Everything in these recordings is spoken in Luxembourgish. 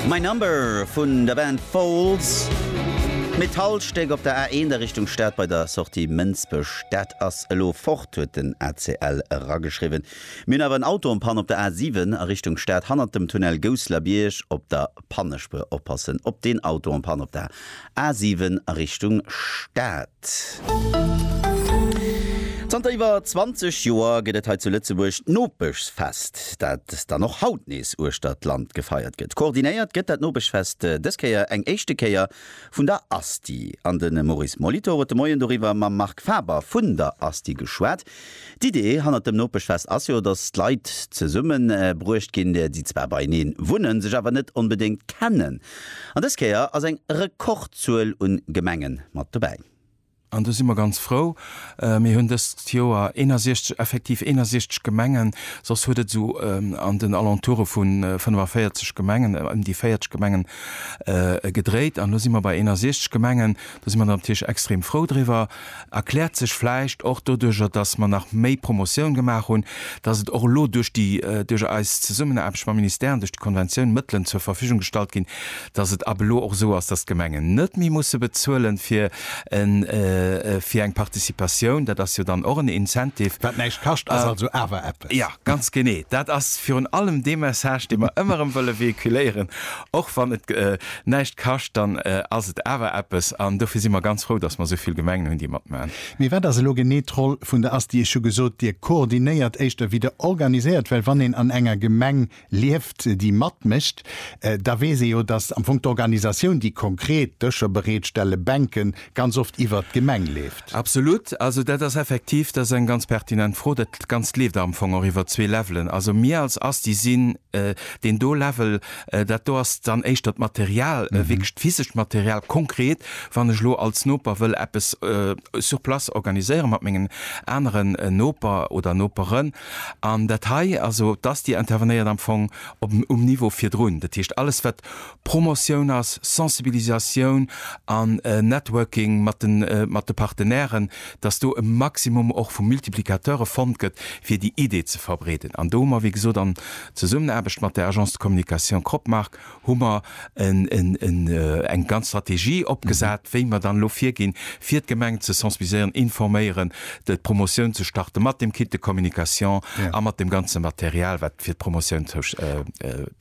My Number vun der Band Foals, Metallstéck op der A1 a Richtung Stad bei der Sortie Mënsbech. Dat ass elo fort, huet den ACL erageschriwwen. Mir hunn awer en Auto en Panne op der A7 a Richtung Stad hannert dem Tunnel Gousselerbierg. Op der Pannespuer oppassen. Op deen Auto en Panne op der A 7 a Richtung Stad. Zanter iwwer 20 Joer gëtt et hei zu Lëtzebuerg d'Nopeschfest, dat dann och haut nees uechter d'Land gefeiert gëtt. Koordinéiert gëtt dat Nopeschfest dës Kéier eng éischte Kéier vun der ASTI an de Maurice Molitor huet de Moien doriwwer mam Marc Faber vun der ASTI geschwat. D'Idee hannert dem Nopeschfest ass jo, dass d'Leit zesumme bruecht ginn, déi zwar beieneen wunnen, sech awer net onbedéngt kennen. An dës Kéier ass eng Rekordzuel un Gemenge mat dobäi. An do si mer ganz frou. Mir hunn dëst Joer 61, effektiv 61 Gemengen, soss huet et esou an den Alentoure vu 45 Gemengen, ëm déi 40 Gemengen gedréit. An elo si mer bei 61 Gemengen. Do si mer natierlech extrem frou driwwer. Erkläert sech vläicht och doduercher, dass mer nach méi Promotioun gemaach hunn, dass et och elo duerch déi, duerch eis Zesummenaarbecht mam Ministère an duerch déi Konventioun Mëttelen zur Verfügung gestallt ginn, dass et ab elo och esou ass, dass d'Gemengen net méi musse bezuelen fir e, fir eng Participatioun. Dat ass jo dann och en Incentive. Wat näischt kascht, ass also awer eppes. Jo, ganz genee. Dat ass virun allem dee Message, dee mer ëmmer erëm wëlle véhiculéieren. Och wann et näischt kascht, dann ass et awer eppes. An dofir si mer ganz frou, dass mer esou vill Gemengen hunn, déi matmaachen. Mee wat ass elo genee d'Roll vun der asti? Ech hu gesot, Dir koordinéiert éischter wéi Der organiséiert. Well wann een an enger Gemeng lieft, déi matmécht, da weess ee jo, dass am Fong d'Organisatioun, déi konkret Dëscher bereetstellen, Bänken, ganz oft iwwert d'Gemeng leeft. Absolut. Also dat ass effektiv, dat ass eng ganz pertinent Fro. Dat Ganzt leeft am Fong och iwwert zwee Levelen. Also mir als ASTI sinn deen do Level. Dat do ass dann éischter d'Material, wierklech d'physescht Material. Konkret, wann ech elo als Noper wëll eppes sur place organiséiere mat mengen anere Noper oder Noperen, an dat hei, also d'ASTI intervenéiert am Fong op um Niveau virdrun. Dat heescht, alles wat Promotioun ass, Sensibilisatioun an Networking mat de Partenairen, dass do e Maximum och vu Multiplicateure fonnt gëtt, fir déi Idee ze verbreeden. An do hu mer, wéi gesot, an Zesummenaarbecht mat der Agence de communication Cropmark hu mer eng ganz Strategie opgesat, wéi mer dann elo virginn, fir d'Gemengen ze sensibiliséieren, informéieren, d'Promotioun ze starten, mat dem Kit de communication a mat dem ganze Material, wat fir d'Promotioun.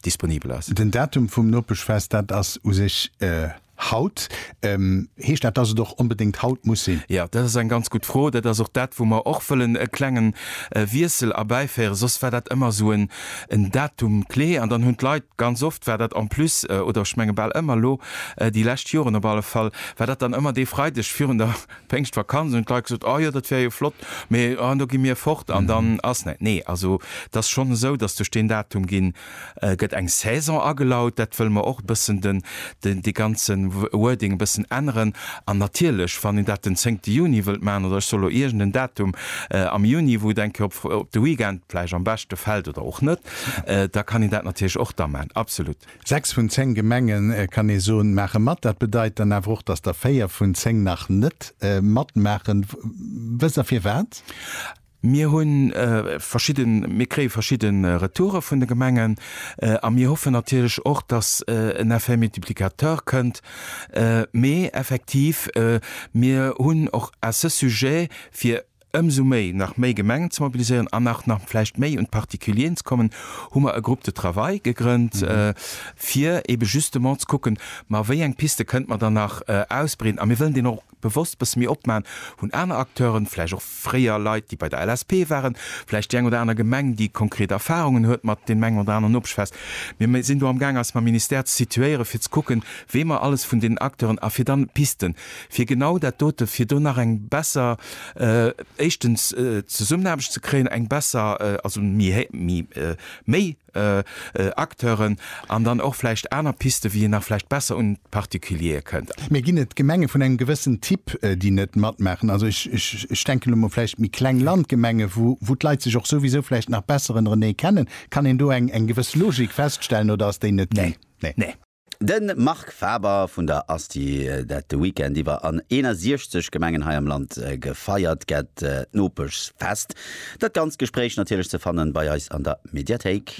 disponibel ass. Den Datum vum Nopeschfest, dat ass u sech haut. Heescht dat, dass et och onbedéngt haut muss sinn? Jo, dat ass eng ganz gutt Fro. Dat ass och dat, wou mer och wëllen e klengen Wiessel erbäiféieren. Soss war dat ëmmer esou en Datum clé an dann hunn d'Leit, ganz oft war dat en plus, oder ech menge bal ëmmer elo, déi lescht Joren op alle Fall, war dat dann ëmmer dee Freideg virun der, D'Péngschtvakanz hunn d'Leit gesot, oh jo, dat wär jo flott, mee oh, do gi mir fort an dann ass näit. Nee, also et ass schonn esou, dass duerch deen Datum ginn, gëtt eng Saison agelaut. Dat wëlle mer och e bëssen den, dee ganze Wording e bëssen änneren. An natierlech, wann een dat den zéngte Juni wëllt maachen, oder ech soll elo iergend en Datum am Juni, wou et eng Kéier op, op de Weekend vläicht am beschte fält oder och net, da kann een dat natierlech och da maachen, absolutt. Sechs vun zéng Gemenge kann ee soen, maache mat. Dat bedeit dann awer och, datt der véier vun zéng nach net matmaachen. Wësst Der firwat? Mir hunn verschidde, mir kréie verschidde Retoure vun de Gemengen a mir hoffen natierlech och, datt en Effet multiplicateur kënnt. Mee effektiv, mir hunn och à ce sujet fir ëmsou méi nach méi Gemengen ze mobiliséieren an nach nach vläicht méi un d'Particulieren ze kommen, hu mer e Groupe de travail gegrënnt, fir ebe justement ze kucken, ma wéi eng Piste kënnte mer dann nach ausbreeden. A mir wëllen deen och bewosst e bësse méi opmachen, hunn aner Acteuren, vläicht och fréier Leit, déi bei der LSP waren, vläicht déi eng oder aner Gemeng, déi konkret Erfahrungen huet mat deem engen oder aneren Obstfest. Mir sinn do amgaang, eis mam Ministère ze situéieren, fir ze kucken, wee mer alles vun deenen Acteuren, a fir dann Pisten, fir genau dat dote, fir do nach eng besser, éischtens Zesummenaarbecht ze kréien, eng besser, also méi, méi Acteuren an dann och vläicht aner Piste wéi een nach vläicht besser un d'Particuliere kënnt. Mir ginn et Gemenge vun engem gewëssen Typ, déi net matmaachen. Also ech denken elo mol vläicht méi kleng Landgemenge wou d'Leit sech och souwisou vläicht nach besser ënnerenee kennen. Kann een do eng gewëss Logik feststellen oder ass déi net ginn? Nee. De Marc Faber vun der Asti, dat de Weekend iwwer an 61 Gemengen hei am Land gefeiert gett, d'Nopeschfest. Dat ganzt Gespréich natierlech ze fannen bei eis an der Mediathéik.